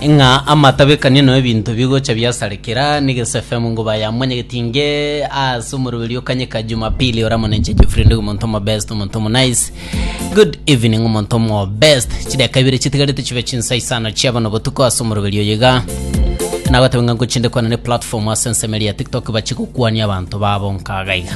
ng'a amatabekania no ebinto bigocha biasarekera negesefemu ngo bayamonyegetinge ase omoroberi okanyeka jumapili oramonenche jeffrey ndi omonto omo best omonto omo nice good evening omonto omo best chideka ibere chitigarete chibe chinsa isano chiabana obotuko ase omoroberi oyiga nagotebenga ngochinde kwana ne platform ase ensemo eria ya tiktok bachigokwania abanto babo nkagaiga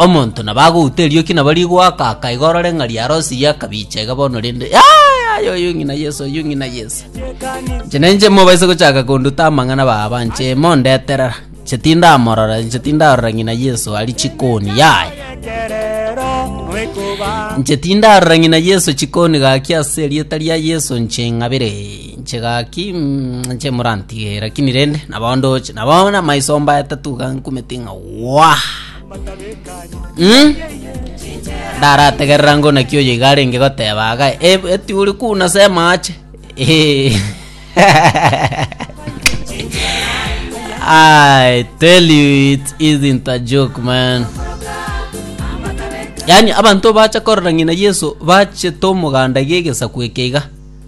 Omonto nabo agouta erioki nabo rigoaka, akaega orore ng'a riarosirie, akabiicha iga bono rende. Ai, ai, oyu ng'ina Yesu, oyu ng'ina Yesu. Inche nainche mobaise gochaka konduta amang'ana baba, inche mondeterera. Inche tindamorora, inche tindarora ng'ina Yesu aria chikoni, yaya. Inche tindarora ng'ina Yesu chikoni gaki ase erieta ria Yesu inche ng'abere. Inche gaki inche morantige lakini rende nabao ndoche nabao namaiso mbaya tatu gankumete ng'a wah mm? ndarategerera ngo naki oyo iga arenge goteba aga "Eh, eti uri kuna sema ache Eh. I tell you it isn't a joke man yani abanto bacha korora ng'ina yesu bachete omoganda giegesaku eke iga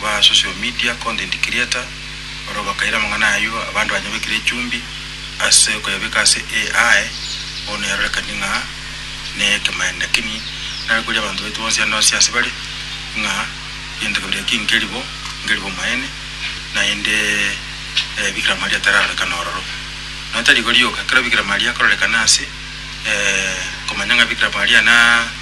kwa social media, content creator, barabwo bakaira amang'ana ayio abanto banyabekire echumbi ase okoyabeka ase AI, bono yarorekanie ng'a nekemanyereria lakini narekweria abanto baito bonsi ande onsi ase bare ng'a egento kebere eki nkeri bo, nkeri bomaene naende bikira maria tararorekana ororo. Nonya tari igo rioka, ekero bikira maria akororekana ase komanya ng'a bikira maria na.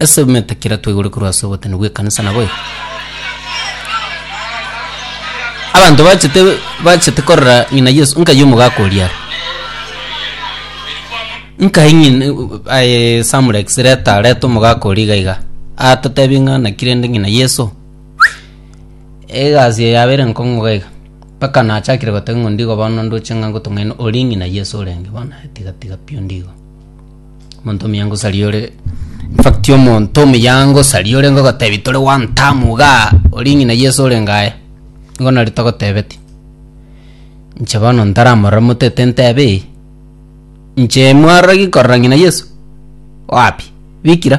Ase emetakera twaigure korwa ase obotene bw'ekanisa na goika abanto bachete bachete korora ng'ina Yesu nkaye omogaka oria are nkae ng'ina aye Samurex reta reta omogaka oria iga iga atotebi ng'a naki rende ng'ina Yesu egasi eye yaba ere nkong'u iga iga mpaka nachakire gotebi ng'a ondigo bono ndoche ng'a ngotong'aine ori ng'ina Yesu orenge bono aye tiga tiga pi ondigo. Omonto omuya ngosaria ore in fact omonto omuya ngosaria ore ngogotebi tore one term iga ori ng'ina Yeso ore ngaye nigo nari togotebeti inche bono ntaramorora motete ntebe eye inche mwarorigi korora ng'ina Yeso wapi bikira.